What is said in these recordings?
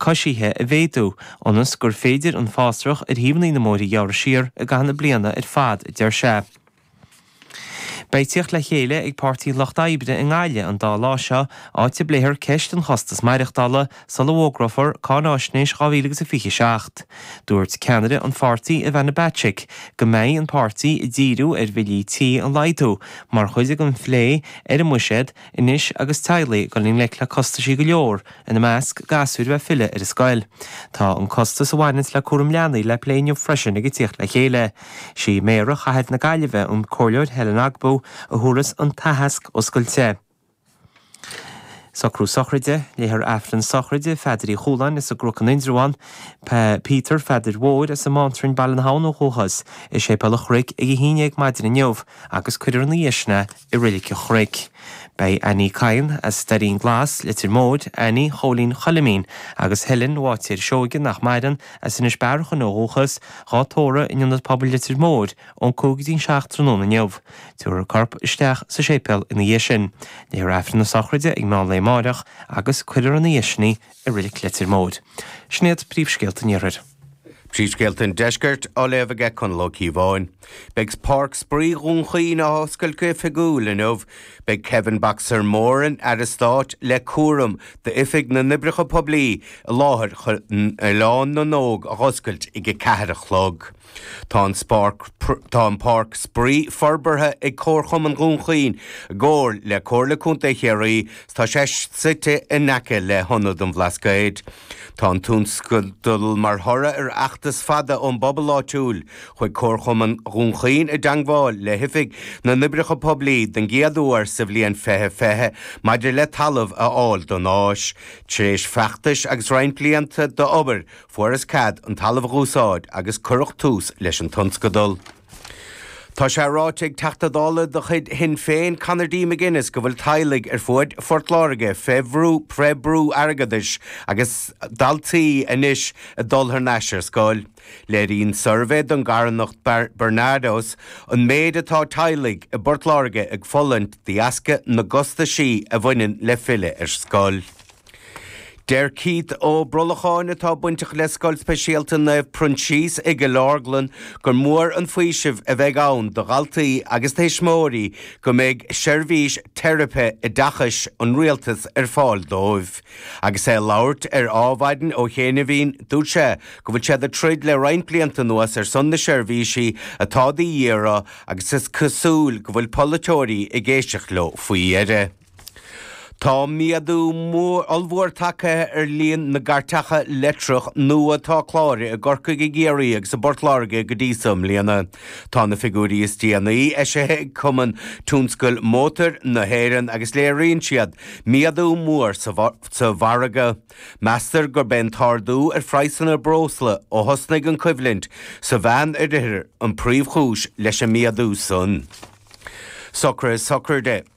coisithe a mhéadú, ionas gur féidir an fásrach ar thaobhannaí na mbóithre ghearradh siar i gcaitheamh na bliana ar fad, a deir sé. Beidh tíocht le chéile ag Páirtí an Lucht Oibre i nGaillimh an dá lá seo, áit a bpléifear ceist an chostais maireachtála sula bhfógrófar cáinaisnéis 2027. Dúirt ceannaire an pháirtí, Ivana Bacik, go mbeidh an páirtí ag díriú ar bhillí tí a laghdú mar chuid den phlé ar an mbuiséad anois agus teaghlaigh ag dul i ngleic le costaisí go leor, ina measc, gasúir bheith ag filleadh ar an scoil. Tá an costas a bhaineanns le cúram leanaí le plé inniu freisin ag an tíocht le chéile. Sí Méara Chathair na Gaillimhe, an Comhairleoir Helen Ogbu, a thabharfas an t-aitheasc oscailte. Socrú Sochraide, Léifear Aifreann Sochraide, Pheadair Uí Chúláin as an gCnoc in Indreabhán, Peter Pheadair Mhóir as an mBánrainn, Baile na hAbhann ó dhúchas, i Séipéal an Chnoic ag a haon dhéag maidin inniu agus cuirfear ina dhiaidh sin é i Reilig an Chnoic. Beidh Annie Cahan as Doirín Glas, Leitir Móir, Annie Chóilín Choilmín agus Helen Bháitéir Seoige, nach maireann, as Inis Bearachain ó dhúchas, dhá tórramh in Ionad Pobail Leitir Móir ón 5 go dtí an 7 tráthnóna inniu. Tabharfar a corp isteach sa séipéal ina dhiaidh sin. Léifear Aifreann na sochraide ag meán lae amáireach agus cuirfear ina dhiaidh sin í i Reilig Leitir Móir. Sin iad príomhscéalta an iarthair. Príomhscéalta an Deiscirt á léamh aige Conall Ó Cíobháin. Beidh Páirc Spraoi Dhún Chaoin á oscailt go hoifigiúil inniu. Beidh Kevin 'Boxer' Moran, Aire Stáit le cúram d'Oifig na nOibreacha Poiblí, i láthair chun Oileán na nÓg a dh'oscailt ag 4 a chlog. Tá, tá an Páirc Spraoi forbartha ag Comharchumann Dhún Chaoin i gcomhar le Comhairle Contae Chiarraí 's tá sé suite in aice le hIonad an Bhlascaoid. Tá an tionscadal mar thoradh ar fheachtas fada ón bpobal áitiúil. Chuaigh Comharchumann Dhún Chaoin i dteangmháil le hOifig na nOibreacha Poiblí den gcéad uair sa bhliain fiche fiche maidir le talamh a fháil don áis. Tar éis feachtais agus roinnt blianta d'obair, fuarthas cead an talamh a úsáid agus cuireadh tús leis an tionscadal. Tá sé ráite ag Teachta Dála de chuid Shinn Féin, Conor D. McGuinness, go bhfuil teaghlaigh ar fuaid Phort Láirge fé bhrú, fé bhrú airgeadais agus daltaí anois ag dul thar n-ais ar scoil. Léiríonn suirbhé don gcarthanacht Barnardos an méid atá teaghlaigh i bPort Láirge ag fulaingt de dheasca na gcostaisí a bhaineann le filleadh ar scoil. Deir Keith Ó Brolacháin, atá bainteach le Scoil Speisialta Naomh Proinsias i gCill Orglan, gur mór an faoiseamh a bheidh ann do dhaltaí agus tuismitheoirí go mbeidh seirbhís Teiripe Oideachais an Rialtais ar fáil dóibh. Agus é ag labhairt ar Ádhmhaidin ó chianaibhín, dúirt sé go bhfuil siad ag troid le roinnt blianta anuas ar son na seirbhísí atá de dhíth orthu agus is cosúil go bhfuil polaiteoirí ag éisteacht leo faoi dheireadh. Tá méadú mór, ollmhór tagtha ar líon na gcairteacha leictreach nua atá cláraithe i gCorcaigh, i gCiarraí agus i bPort Láirge go dtí seo i mbliana. Tá na figiúirí is déanaí eisithe ag Cumann Tionscail Mótair na hÉireann agus léiríonn siad méadú mór sa mhargadh. Meastar gurb é an t-ardú ar phraghsanna breosla ó thosnaigh an choimhlint sa Mheánoirthear an príomhchúis leis an méadú san. Socraithe sochraide.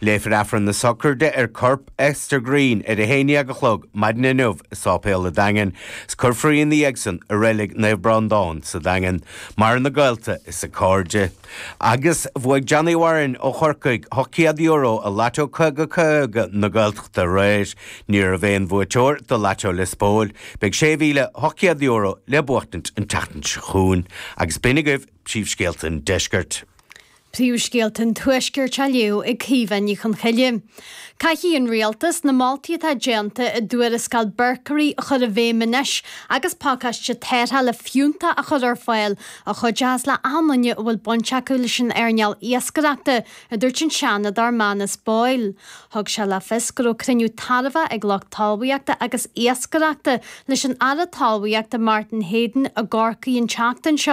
Léifear Aifreann na Sochraide ar chorp Esther Green ar a haon dhéag a chlog maidin inniu i Sáipéal a' Daingin, 's cuirfear í 'na dhiaidhsan i Reilig Naomh Breándán sa Daingean, méala dá gaolta is dá cairde. Agus bhuaidh Johnny Warren ó Chorcaigh €800 i Lató 50 50 na Gaeltachta aréir. Ní raibh aon bhuaiteoir do Lató Lios Póil. Beidh €6,800 le buachtaint an tseachtain seo chugainn. Agus b'in agaibh príomhscéalta an deiscirt. Príomhscéalta an Tuaiscirt á léamh ag Caoimhe Ní Chonchoille. Caithfidh an Rialtas na moltaí atá déanta i dTuarascáil Berkery a chur i bhfeidhm anois agus pacáiste tarrthála fiúntach a chur ar fáil a chuideochas le achan duine a bhfuil baint acu leis an earnáil iascaireachta, a dúirt an Seanadóir Manus Boyle. Thug sé le fios go raibh cruinniú tairbheach ag lucht talmhaíochta agus iascaireachta leis an Aire Talmhaíochta Martin Heydon i gCorcaigh an tseachtain seo.